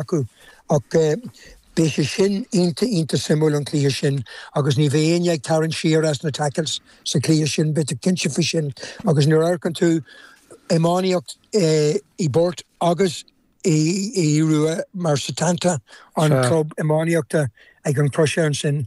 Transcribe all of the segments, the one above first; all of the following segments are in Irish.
acu ach beidh sé sin iontach iontach suimiúil an cluiche sin agus ní bheidh éinne ag tarraingt siar as na tackles sa chluiche sin beidh tú cinnte faoi sin agus nuair amharcann tú iománaíocht i Burt agus Aodh Rua mar Setanta an club iománaíochta ag an gCrois ansin.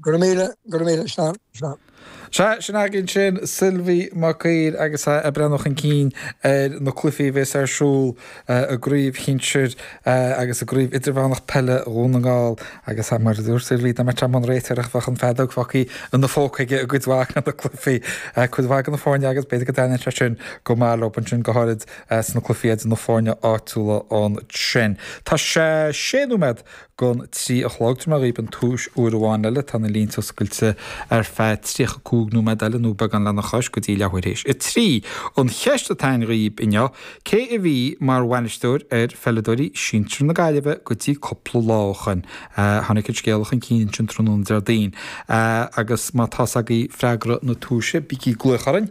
Go raibh míle, go raibh míle, slán, slán. Sea, sin againn sin, Sylvi Mag Uidhir agus é ag breathnú chun cinn ar na cluichí a bheas ar siúl i gCraobh Shinsir agus i gCraobh Idirmheánach Peile Dhún na nGall agus mar a dúirt Sylvi, dá mbeadh sé i mbun réiteoireachta bheadh an fheadóg fágtha ina phóca aige i gcuid mhaith de na cluichí, cuid mhaith de na foirne agus b'fhéidir go dtaitníonn sé sin go maith leo ansin, go háirid sna cluichí idir na foirne áitiúla ansin. Tá sé sé nóiméad don trí a chlog tabharfaidh mé dhaoibh an tomhais, uair amháin eile tá na línte oscailte ar feadh 35 nóiméad eile nó beagán lena chois go dtí leathuair théis a trí. An cheist atá a'inn dhaoibh inniu, cé a bhí mar bhainisteoir ar pheileadóirí sinsir na Gaillimhe go dtí cúpla lá ó shoin? Tháinig an scéala chun cinn ansin tráthnóna Déardaoin agus má tá 's agaibh freagra na tomhaise, bígí ag glaoch orainn.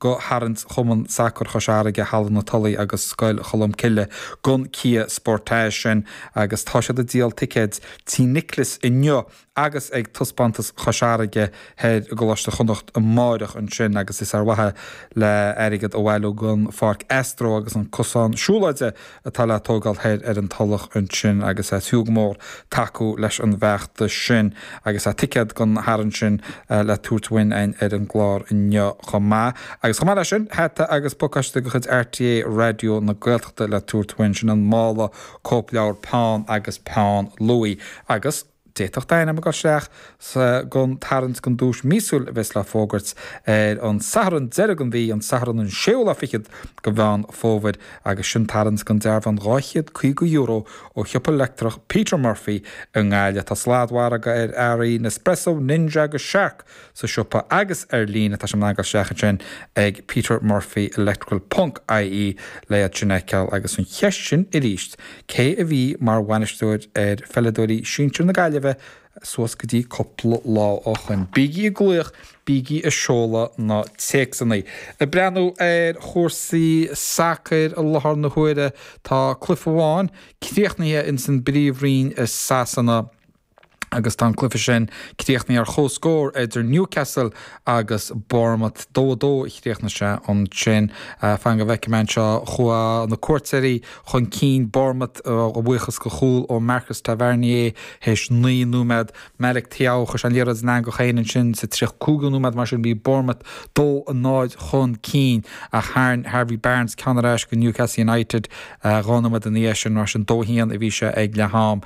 do tharraingt Chumann Sacair Chois Fharraige, Halla na Tulaí agus Scoil Cholmcille gun cia sportais sin agus tá siad ag díol ticéad Tí Nioclais inniu agus ag Taispeántas Chois Fharraige Thoir i gColáiste Chonnacht amáireach ansin agus is ar mhaithe le airgead a bhailiú don pháirc astro agus an cosán siúlóide atá le tógáil thoir ar an Tulach ansin agus is fiú go mór tacú leis an bhfeachtas sin agus tá ticéad don Tharraingt sin le tabhairt uainn a'inn ar an gclár inniu chomh maith. Agus chomh maith leis sin, hata agus pacáiste de chuid RTÉ Raidió na Gaeltachta le tabhairt uainn, sin an mála cóipleabhar Peann agus Peann Luaidh agus. D'fhéadfadh d'ainm a ghoil isteach don tarraingt don duais míosúil a bheas le fógairt ar an Satharn deiridh den mhí, an Satharn an séú lá fichead de Mheán Fómhair, agus sin tarraingt don dearbhán €250 ó shiopa leictreach Peter Murphy i nGaillimh. Tá sladmhargadh ar earraí Nespresso, Ninja agus Shark sa siopa agus ar líne, tá sibh in ann a ghoil isteach ansin ag Peter Murphy Electrical ponc ie le iad sin a fheiceáil agus an cheist sin arís, cé a bhí mar bhainisteoir ar pheileadóirí sinsir na Gaillimhe suas go dtí cúpla lá ó shoin? Bígí ag glaoch, bígí ag seoladh na téacsannaí. Ag breathnú ar chúrsaí sacair i láthair na huaire, tá cluiche amháin críochnaithe ins an bpríomhroinn i Sasana, agus tá an cluiche sin críochnaithe ar chomhscór idir Newcastle agus Bournemouth. Dó a dó a chríochnaigh sé ansin. Fan go bhfeicfidh mé anseo, chuaigh na cuairteoirí chun cinn, Bournemouth, a bhuíochas de chúl ó Marcus Tavernier théis naoi nóiméad. Malick Thiaw, chuir sé an liathróid ina eangach féin ansin sa 35ú nóiméad, mar sin bhí Bournemouth dó a náid chun cinn, ach tharraing Harvey Barnes ceann ar ais go Newcastle United dhá nóiméad ina dhiaidh sin, mar sin dó a haon a bhí sé ag leath-am.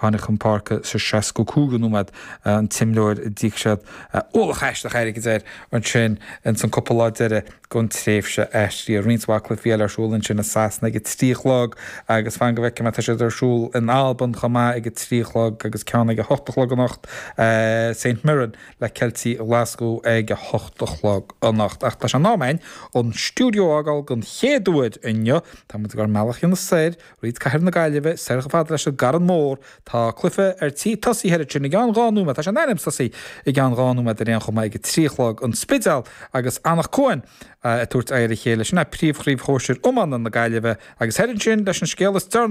Tháinig chun páirce sa seascú cúigiú nóiméad an t-imreoir a d'íoc siad ualach aisteach airgid air ansin ins an cúpla lá deiridh gon tréimhse aistrithe. Roinnt mhaith cluichí eile ar siúl ansin i Sasana ag a trí a chlog agus fan go bhfeicfidh mé tá siad ar siúl in Albain chomh maith ag a trí a chlog agus ceann ag a hocht a chlog anocht. St Mirren le Ceiltigh Ghlaschú ag a hocht a chlog anocht. Ach tá sé in am a'inn an stiúideo a fhágáil don chéad uair inniu. Táimid ar ár mbealach anois soir. Tríd cathair na Gaillimhe soir chomh fada leis an gCarn Mór. Tá cluiche ar tí tosaí thoir ansin i gceann dhá nóiméad. Tá sé in ainm tosaí i gceann dhá nóiméad ar aon chuma ag a trí a chlog, An Spidéal agus Anach Cuain, ag tabhairt aghaidh ar a chéile. Sin é príomhchraobh shóisir iomána na Gaillimhe. Agus thoir ansin leis an scéal is deireanaí.